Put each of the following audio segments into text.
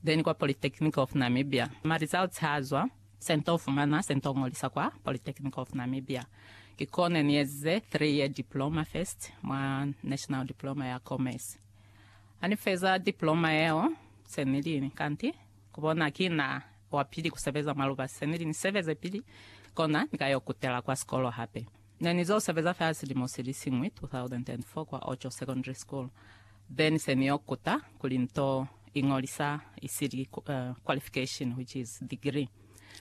Then kwa Polytechnic of Namibia. Ma results ha zwa, se nto fumana, se nto ngolisa kwa Polytechnic of Namibia. Ki kone ni ezize three year diploma first mwa National Diploma ya Commerce. Ha ni feza diploma yeo, se ni li kanti ku bona ki na wa pili ku sebeza mwa lubasi. Se ni li ni sebeze pili, kona ni ka yo kutela kwa sikolo hape. Ne ni zo sebeza fela silimo sili siñwi, 2004, kwa Ocho Secondary School, then se ni yo kuta kuli nto iñolisa isili qualification, which is degree.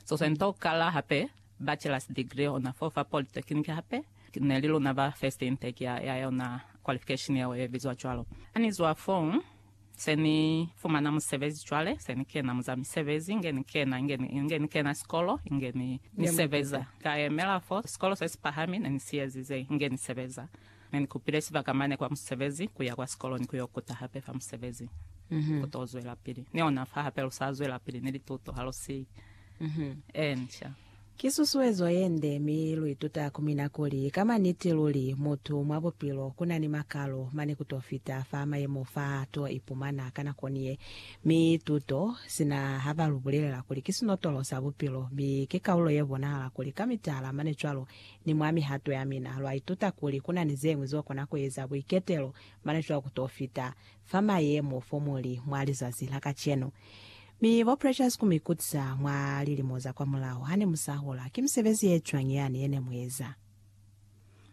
So se nto kala hape bachelor's degree ona fo fa polytechnic hape, ne li luna ba first intake ya yona qualification yeo ye bizwa cwalo. Ha ni zwa foo, Se ni fumana musebezi cwale, se ni kena mu za misebezi, inge ni kena, inge ni, inge ni kena sikolo, inge ni, ni sebeza. Ka yemela fo, sikolo se si pahami ne ni si ezize, inge ni sebeza. Ne ni kupile sibaka mane kwa musebezi, kuya kwa sikolo ni ku yo kuta hape fa musebezi, ku to zwelapili ni ona fa hape lu sa zwelapili ni lituto, ha lu siyi. Encia. Ki susuezo ye nde, mi lu ituta ku mina kuli, ka mwa niti luli, mutu mwa bupilo ku na ni makalo, mane ku to fita fa mayemo fa to ipumana ka nako ni ye. Mi tuto, sina ha ba lu bulelela kuli ki sinotolo sa bupilo, mi ki kaulo ye bonahala kuli ka mitala mane cwalo, ni mwa mihato ya mina, lwa ituta kuli ku na ni ze ñwi zo kona ku eza buiketelo, mane cwalo ku to fita fa mayemo fo mu li mwa lizazi la kacenu. Mi bo Precious ku mi kutisa mwa lilimo za kwamulaho ha ne mu sa hola, ki misebezi ye cwañi yani ye ne mu eza?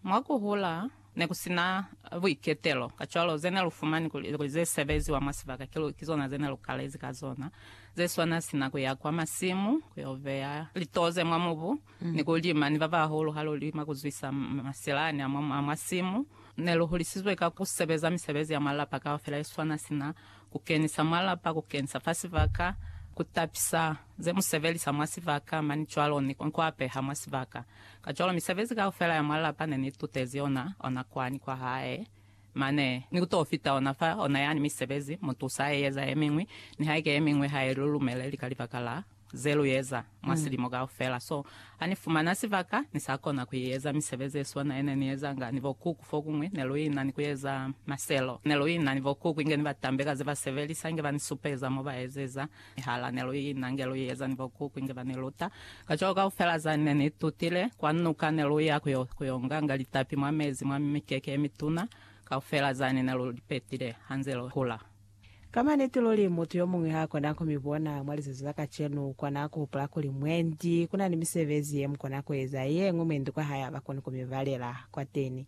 Mwa ku hula, ne ku si na buiketelo. Kacwalo, ze ne lu fumani kuli ze sebeziwa mwa sibaka ki zona ze ne lu kalezi ka zona, ze swana sina ku ya kwa masimu ku yo beya litoze mwa mubu, Ni ku lima ni ba bahulu ha lu lima ku zwisa masilani a mwa simu. Ne lu hulisizwe ka ku sebeza misebezi ya mwa lapa kaufela ye swana sina ku kenisa mwa lapa, ku kenisa fa sibaka, ku tapisa ze mu sebelisa mwa sibaka, mani cwalo, ni ku apeha mwa sibaka. Kacwalo misebezi kaufela ya mwa lapa ne ni itutezi yona, ona kwani kwa hae mane, ni ku t'o fita ona fa ona yani misebezi, mu tusa ha e eza ye miñwi, nihaike ye miñwi ha i lu lumeleli ka libaka la ze lu eza mwa silimo kaufela. So, ha ni fumana sibaka, ni sa kona ku eza misebezi ye swana ye ne ni ezanga ni bo Kuku. Fokuñwi ne lu ina ni ku eza maselo. Ne lu ina ni bo Kuku inge ni ba tambe ka ze ba sebelisa, inge ba ni supeza mo ba ezeza mihala. Ne lu ina nge lu eza ni bo Kuku inge ba ni luta. Kacwalo kaufela za ne ni tutile, kwa nuka ne lu ya ku yo, ku yo nganga litapi mwa mezi, mwa mikeke ye mituna, kaufela zani ne lu li petile ha nze lu hula. Ka maniti luli, mutu yomuñwi haakona kumibona mwa lizazi la kacenu kona kuhupula kuli mwendi kuna ni misebezi yemukona kueza yeñwi mwendi kwahae habakoni kumibalela kwateni.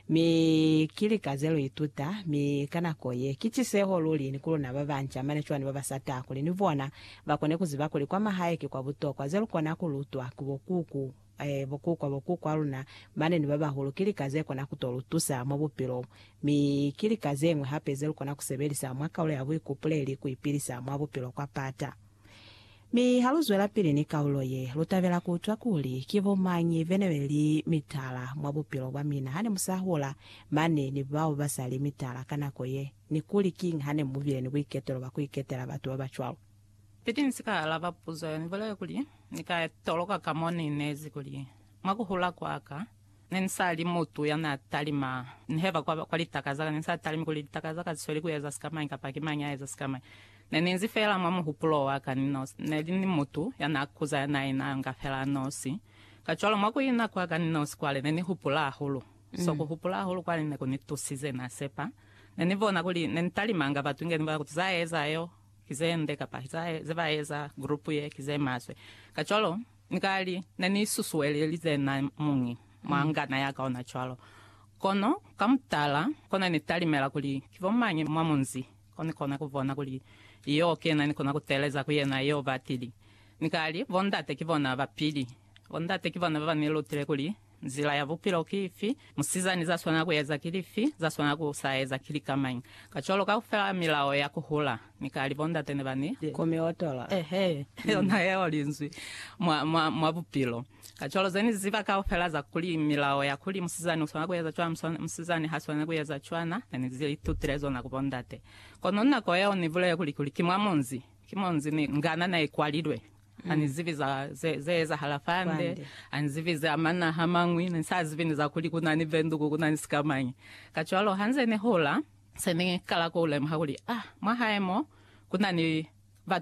Mi ki lika zeluituta, mi ka nako ye, ki ciseho luli ni kuluna babanca mane cwani babasata kuli ni bona bakone kuziba kuli kwamahae ki kwabutokwa zelukona kulutwa ku bo kuku. Ee, bokukwa, bokukwa luna, mane ni babahulu, ki lika ze kona ku to lu tusa mwa bupilo bu. Mi ki lika ze ñwi hape ze lu kona ku sebelisa mwa kaulo ya buikupuleli ku ipilisa mwa bupilo kwa pata. Mi ha lu zwelapili ni kaulo ye, lu tabela ku utwa kuli ki bo mañi be ne be li mitala mwa bupilo bwa mina ha ne mu sa hola, mane ni bao ba sa li mitala ka nako ye, ni kuli kiñi ha ne mu bile ni buiketelo bwa ku iketela batu ba ba cwalo. Pili ni si ka alaba puzo ye, ni bulele kuli, Ni ka toloka ka mo ni nezi kuli, Mwa ku hula kwa ka, ne ni sa li mutu ya n'a talima ni heba kwa, kwa litaka za ka. Ne ni sa talimi kuli litaka za ka li sweli ku eza sikamañi kapa ki mañi a eza sikamañi. Ne ni nzi fela mwa muhupulo wa ka ni nosi. Ne li ni mutu ya n'a kuza ya n'a ina nga fela a nosi. Kacwalo, mwa ku ina kwa ka ni nosi kwale, ne ni hupula hahulu. So ku hupula hahulu kwale ne ku ni tusize, n'a sepa. Ne ni bona kuli ne ni talimanga batu inge ni bolela kuti za eza yo, Ki zende kapa zae ze ba eza group ye ki ze maswe. Kacwalo, ni ka li, ne ni susuelelize na muñi mwa ngana ya ka ona cwalo. Kono, ka mutala, ko ne ni talimela kuli ki bo mañi mwa munzi ko ni kona ku bona kuli yo kena ni kona ku teeleza ku yena yo batili. Ni ka li, Bondate ki bona ba pili. Bondate ki bona ba ba ni lutile kuli Nzila ya bupilo ki ifi? Musizani za swanela ku eza ki lifi? Za swanela ku sa eza ki lika mañi? Kacwalo kaufela milao ya ku hula ni ka li bondate ne ba ni. Ku mi otola. Ehe, yona yeo linzwi mwa, mwa, mwa bupilo. Kacwalo ze ni ziba kaufela za kuli, milao ya kuli musizani u swanela ku eza cwana, musizani ha swaneli ku eza cwana, ne ni li tutile zona ku bondate. Kono nako yeo ni bulele kuli, kuli ki mwa munzi, ki munzi ni ngana ne i kwalilwe. Ha ni zibi za ze, ze ezahala fande. Ha ni zibi za manaha mañwi. Ne ni sa zibi ni za kuli ku na ni venduku, ku na ni sikamañi. Kacwalo ha nze ni hola, se ni kala ku lemuha kuli, ah, mwa hae mo, ku na ni batu.